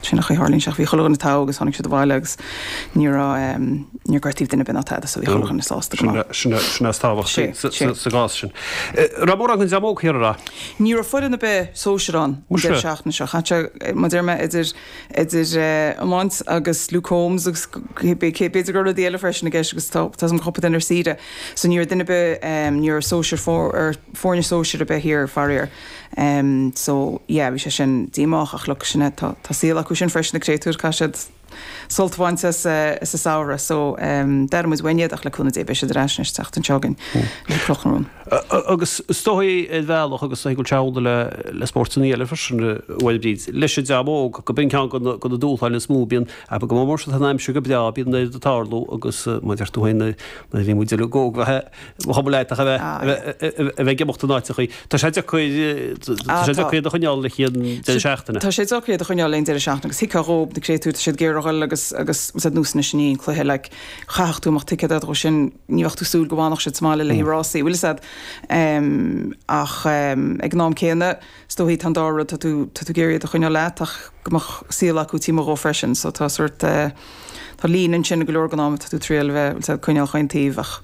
Sin é an chaoi a tharlaíonn sé ach bhí chuile dhuine togha agus tháinig siad abhaile agus ní raibh em, níor gortaíodh duine ar bith ná tada so bhí chuile dhuine sásta go maith. Sin é, sin é is tábhachtaí Sin, sa, sin. sa, sa gcás sin. Eh, Raibh mórán den dream óg thiar ann. Ní raibh foireann ar bith sóisir ann an Muise. deireadh seachtaine seo. Chaith sé, eh, mar a deir mé idir idir eh, iomáint agus Luke Combs agus c- c- b- c- b'fhéidir go raibh rud eile freisin i gceist agus tá tá cúpla duine ar saoire. So ní raibh duine ar bith em, ní raibh sóisir fór ar foirne sóisir ar bith thiar faraor. em so yeah bhí sé sin díomách ach look sin é tá tá saol acu sin freisin na créatúir caithfidh siad sult a bhaint as eh as a samhradh so em d'airigh muid uainn iad ach le cúnamh Dé beidh siad ar ais anois an tseachtain seo chugainn le Cloch na Rón. Agus is dóichí ar bhealach agus é go teann le le spórtanna eile freisin eh bhuel Bríd leis an dream óg gurb in ceann de na de na dúshláin is mó bíonn abair go mór mór má tá an aimsir go breá bíonn neart ag tarlú agus eh mar a deir tú féin na na bhí muid le go go he Chomh maith le haghaidh a bheith ag imeacht in áiteacha, tá sé deacair iad a choinneáil le haon deireadh seachtaine. Tá sé deacair iad a choinneáil le haon deireadh seachtaine agus thuigfeá dhóibh na créatúir, tá siad ag iarraidh a dhul agus agus is iad nósanna sin í an cluiche. Like, chaithfeadh tú imeacht ticéad orthu sin, ní bheadh tú ag súil go bhfanfadh siad sa mbaile le haghaidh rásaí, bhfuil a fhios agat? Ach ag an am céanna. Is dóichí tá an dá rud, tá tú, tá tú ag iarraidh iad a choinneáil leat ach go mbeadh saol acu taobh amuigh dhó freisin. So tá sort, tá líne ansin i go leor gnáth mar tá tú ag triail a bheith, bhfuil a fhios agat, coinneáil chaon taobh ach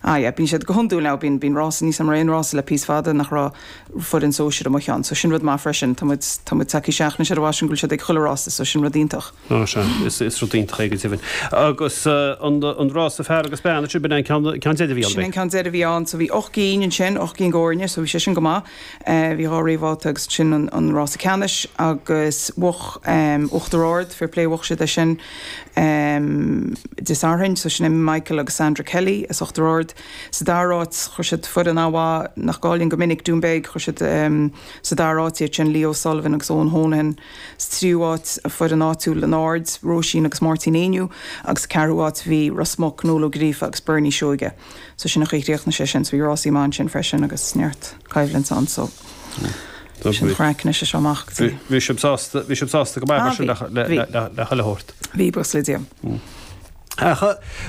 ah yeah, bíonn siad go hiondúil now, bíonn, bíonn rása níos amuigh mar aon rása le píosa fada nach raibh foireann sóisir amuigh ann. So sin rud maith freisin, tá muid, tá muid tagtha seachtain seo bhfaighinn go bhfuil siad ag chuile rása so sin rud iontach. Ná sea, is, is rud iontach é go deimhin. Agus an, an rása fear agus bean, ansin b'in an ceann, ceann deiridh a bhí ann, Sin an b'é? ceann deiridh a bhí ann. So bhí ocht gcinn ansin, ocht gcinn d'fhoirne so bhí sé sin go maith. Bhí dhá réamhbhabhta agus ansin an rása ceannais agus bhuach Uachtar Ard, fair play, bhuach siad é sin Dé Sathairn. So sin é Michael agus Sandra Kelly as Uachtar Ard. Sa dara áit chuir siad foireann an-mhaith nach gcailleann go minic, Doonbeg, chuir siad sa dara áit iad sin, Leo O'Sullivan agus Eoghan Honohan. Sa tríú áit foireann áitiúil an Aird, Róisín agus Máirtín Éinniú agus sa ceathrú áit bhí Ros Muc, Noel Ó Gríofa agus Bernie Seoige. So sin é an chaoi ar chríochnaigh sé sin. So bhí rásaí maithe ansin freisin agus neart coimhlint ann so sin an chraic anois as seo amach go dtí. Bhí sibh sásta, bhí sibh sásta go maith mar sin le chuile shórt. Bhí buíochas le Dia. A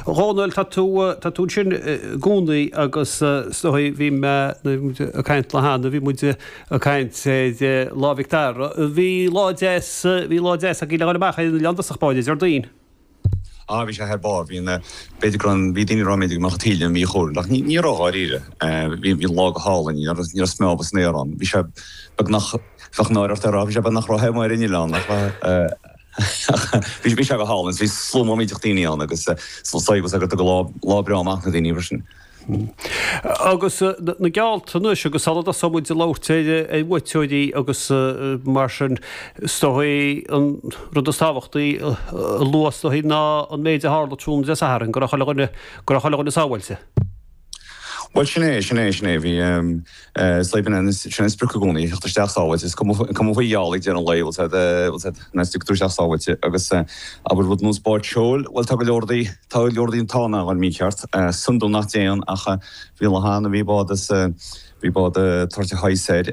Dhónaill tá tú tá tú ansin i gcónaí agus is dóichí bhí mé ag caint le hAnna bhí muid ag caint i dtaobh Lá Mhic Dara. Bhí lá deas bhí lá deas agaibh le dhul amach ar an oileán i dtosach báid Déardaoin. Ah bhí sé thar barr. Bhí an eh, b'fhéidir go raibh, bhí daoine ag rá b'fhéidir go mbeadh an taoille mhí chúil ach ní, ní raibh dháiríre. Eh bhí, bhí an lá go hálainn, ní raibh, ní raibh smeámh san aer ann. Bhí sé beagnach, bheadh náire ort é a rá, bhí sé beagnach ró-the amuigh ar an oileán ach eh ach bhí, bhí sé go hálainn. Bhí slua maith iontach daoine ann agus eh só, só tá a fhios agat tugann lá, lá breá amach na daoine freisin. Agus na geallta anois agus sula dtosaíonn muid ag labhairt ar bhuaiteoirí agus mar sin, is dóigh an rud is tábhachtaí a lua is dóigh ná an méid a tharla tráthnóna Dé Sathairn, go raibh chuile dhuine sábháilte. Bhuel sin é, sin é, sin é. Bhí. Sleamhnáin, agus sin an sprioc i gcónaí, theacht isteach sábháilte, is cuma faoi gheall ag deireadh an lae, bhfuil a fhios agat, bhfuil a fhios agat, ná stiúgtar isteach sábháilte, agus, abair rud nós báid seoil, bhuel, tá go leor dí, tá go leor dí an t-am a ghoil mícheart, is iondúil nach dtéann ach, bhí lá ann a bhí bád as, bhí bád toirte shaghas air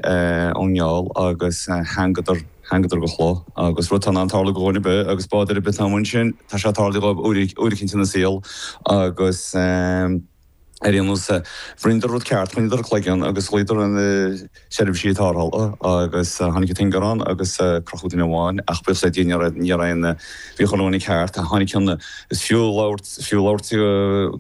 ón ngeall agus thangadar, thangadar go clo, agus rud atá in ann tarlú go dhuine ar bith agus bád ar bith atá amuigh ansin, tá sé tarlaithe dhóibh uair, uair eicínt ina saol agus. Ar aon nós, rinneadar an rud ceart, choinneadar a gcloigeann agus ghlaodar ar na seirbhísí tárthála agus tháinig an t-ingearán agus crochadh duine amháin ach buíochas le Dia ní raibh aon, bhí chuile dhuine ceart. Tháinig cionn is fiú labhairt, fiú labhairt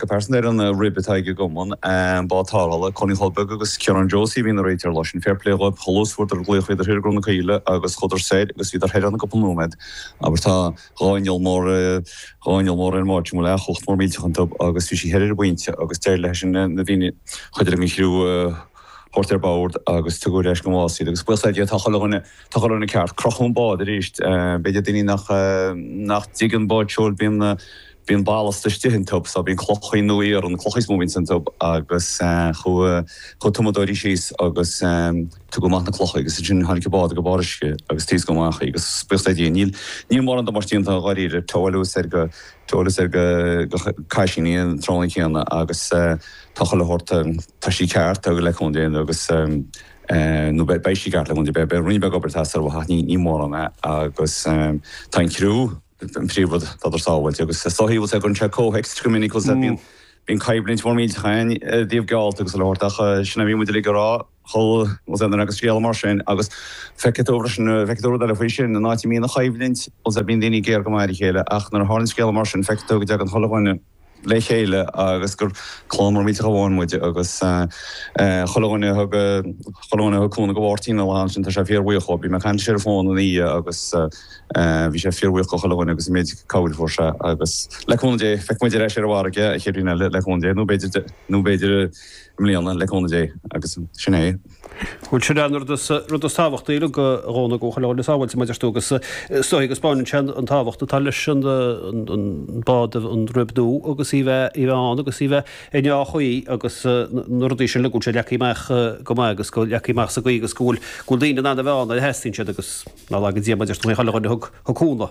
go pearsanta ar an rib atá ag an gCumann, an bád tárthála, Cóilín Choilm Beag agus Ciarán Josie a bhíonn ag réiteach leo sin. Fair play dhóibh, chomh luath is a fuaireadar glaoch, bhíodar thoir i gCró na Caoile agus chuadar soir agus bhíodar thoir ann i gcúpla nóiméad. Abair tá. Dhá inneall mór, dhá inneall mór ar an mbád a bhfuil cumhacht mór millteach iontu agus bhí sí thoir ar an bpointe agus d'éirigh leis an, na daoine, cuid den chriú a thabhairt ar bord agus tugadh ar ais go Más iad agus buíochas le Dia tá chuile dhuine, tá chuile dhuine ceart. Crochadh an bád aríst, b'fhéidir daoine nach, nach dtuigeann báid seoil bíonn na, Bíonn ballast istigh iontu so bíonn clocha nó iarann ann clocha is mó a bhíonn iontu agus chuaidh tumadóirí síos agus tugadh amach na clocha agus ansin tháinig an bád go barr uisce agus taoscadh amach í agus buíochas le Dia. Níl níl mórán damáiste déanta dháiríre tóáladh soir go tóáladh soir go go Caisín í an tráthnóna céanna agus tá chuile shórt tá sí ceart le cúnamh Dé agus nó beidh beidh sí ceart le cúnamh beidh beidh roinnt beag obair tá a fhios agam ní ní mórán agus tá an criú an príomh rud go rabhadar sábháilte agus is dóigh bhfuil a fhios agat cuireann sé comhthéacs go minic bhfuil a fhios agat bíonn bíonn coimhlint mhór mhillteach ann i dtaobh geallta agus abair ach sin a bhí muid uilig a rá chomh bhfuil sé ann agus scéal mar sin agus feicfidh tú freisin feicfidh tú rud eile faoi sin an áit a mbíonn an choimhlint bhfuil a fhios agat bíonn daoine géar go maith ar a chéile ach nuair a tharlaíonn scéal mar sin feicfidh tú go dtagann chuile dhuine le chéile agus gur clann mhór mhillteach amháin muid agus chuile dhuine a thug, chuile dhuine a thug cúnamh go Mháirtín an lá sin tá sé fíor bhuíoch dhó. Bhí mé ag caint leis ar an bhfón ina dhiaidh agus bhí sé fíor bhuíoch go chuile dhuine agus an méid cabhair a fuair sé agus le cúnamh Dé feicfidh muid ar ais ar an bhfarraige an chéad bhliain eile le cúnamh Dé nó b'fhéidir, nó b'fhéidir i mbliana le cúnamh Dé agus sin é. Bhuel, sin é an rud is tábhachtaí uilig a Dhomhnaill, go bhfuil chuile dhuine sábháilte mar a deir tú agus is dóigh go dtaispeánann sé an tábhacht atá leis an mbád, an rib nua agus í bheith ann agus í bheith i ndea-chaoi agus na rudaí sin uilig go bhfuil sé leagtha amach go maith agus leagtha amach sa gcaoi agus go bhfuil daoine in ann a bheith ann nuair a theastaíonn siad agus nár laga Dia mar a deir tú, chuile dhuine a thug cúnamh.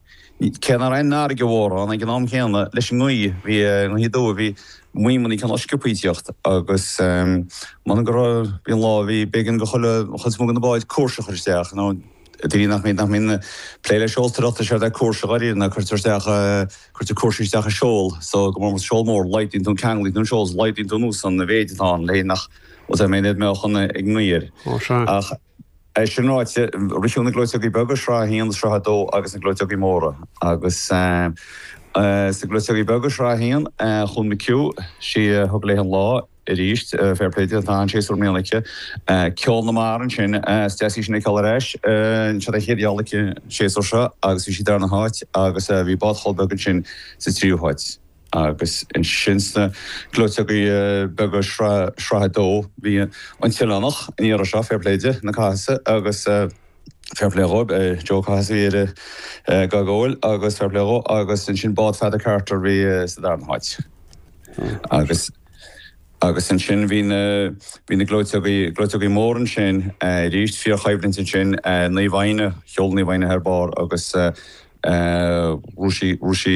Cé nach raibh aon fharraige mhór ann ag an am chéanna leis an ngaoth, bhí an ghaoth aduaidh, bhí maidhmeanna cineál sciobtha ag teacht agus mura go raibh, bhí an lá, bhí, b'éigean do chuile, chuid is mó de na báid cúrsa a chur isteach, nó de bhrí nach mbíonn, nach mbíonn plé le seoltóireacht, séard é cúrsa dháiríre, ná cuirtear isteach, cuirtear cúrsaí isteach i seol, so go mór, seol mór, laghdaíonn tú an, ceanglaíonn tú an seol, laghdaíonn tú anuas an, an mhéid atá ann, le nach, ós é an méid a bheadh ann ag an ngaoth air. Ó, sea. Ach. É sin ráite, ritheadh na gleoiteogaí beaga, sraith a haon, sraith a dó agus na gleoiteogaí móra. Agus sna gleoiteogaí beaga, sraith a haon, chuaigh McHugh, sí a thug léi an lá arís, fair play di, tá an-séasúr i mbliana aici. Ceol na Mara ansin, is deas í sin a fheiceáil ar ais. Seo a chéad gheall aici an séasúr seo agus bhí sí darna háit agus bhí bád Cholpaigh ansin sa tríú háit. Agus ansin sna gleoiteogaí beaga Shraith a Dó, bhí an tOileánach an iarraidh seo, fair play di, na Cathasaigh agus fair play dhóibh, Joe Cathasach a bhí dhá gabháil agus fair play dhó agus ansin Bád Pheada Carter a bhí sa darna háit. Agus agus ansin bhí na bhí na gleoiteogaí gleoiteogaí mór ansin aríst, fíor choimhlint ansin, Naomh Eithne, sheol Naomh Eithne thar barr agus rug sí rug sí,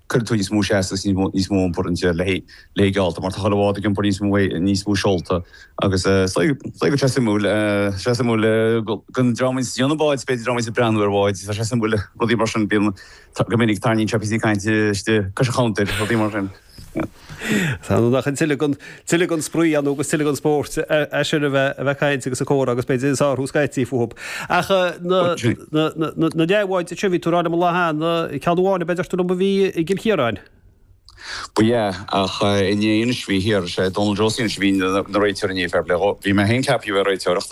Cuireann tú níos mó seasta is níos mó iompar ins a leithéid de gheallta mar tá chuile bhád ag iompar níos mó é níos mó seolta agus eh go sé suimiúil eh sé suimiúil eh don dream a bhíonns ag déanamh báid b'fhéidir dream a bhíonns ag breathnú ar bháid tá sé suimiúil rudaí mar sin bíonn go minic tarraingíonn sé píosaí cainte istigh cois an chabhantair rudaí mar sin. Tá, nach tuilleadh den tuilleadh den spraoi ann agus tuilleadh den spórt é sin a bheith a bheith ag caint agus ag comhrá agus b'fhéidir ag sárú scaití fúthu. Ach na na na dea-bháid seo a bhí tú a rá liom an lá cheana, ceann amháin ab ea a deir tú liom a bhí i gCill Chiaráin. Ba ea, ach inné anois bhí thiar, is é Donal Jones anois a bhí ina réiteoir inné, fair play dhó. Bhí mé féin ceaptha a bheith ag réiteoireacht.